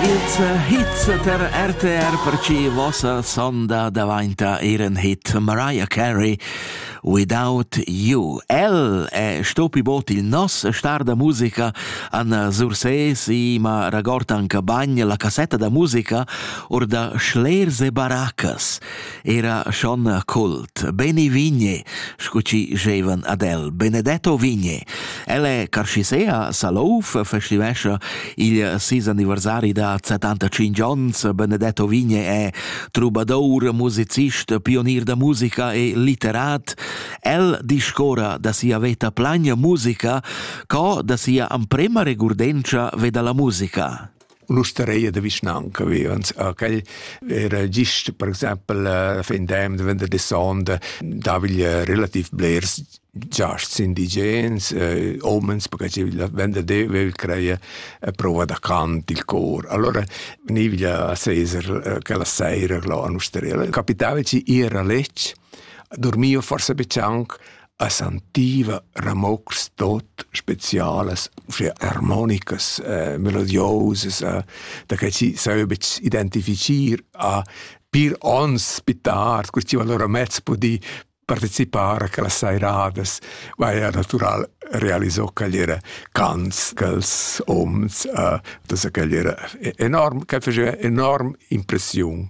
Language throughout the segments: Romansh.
Ils hits per RTR per chi vossa sonda davainta eir ün hit Mariah Carey Without You. El è stopi bot il nos star da musica an Sursés i ma ragord anche bagn la cassetta da musica or da Schlerse Baracas. era schon cult. Beni Vigne, scu ci gevan ad el, Benedetto Vigne. El è Carcisea, Salouf, festivescia il sis anniversari da 75 ans. Benedetto Vigne è trubadour, musicist, pionier da musica e litterat. El discora da sia veta plagna musica, co da sia amprema regurdenza veda la musica. l'ustareia da vischnanca vivans. Quel era gist, per exempel, a fin dem de vender de sonda, daviglia relativ blers giasts indigens, eh, omens, perché la venda de vil creia a prova da cant il cor. Allora venivia a Cesar quella sera là a Nusterella. Capitava ci ir a letg, dormio forse be cianc, a sentiva ramocs tot specialas, uschè armonicas, eh, melodiosas, eh, da che si sai betg identifichir a pir ons pitars, questi allora mezz pudi participare a quella sairadas, ma era natural realizzò che era cants quels oms, uh, das che era enorm, che faceva enorm impressiun.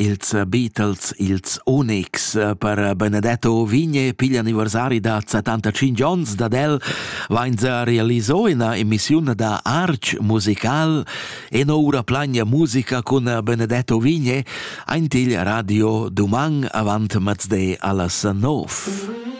Ils Beatles, ils Onyx per Benedetto Ovigne piglian anniversari da 75 onns dad el, vain realiso ina emissiun da Arch musical e noura plagna musica cun Benedetto Ovigne aint il radio duman avant mezde allas nov.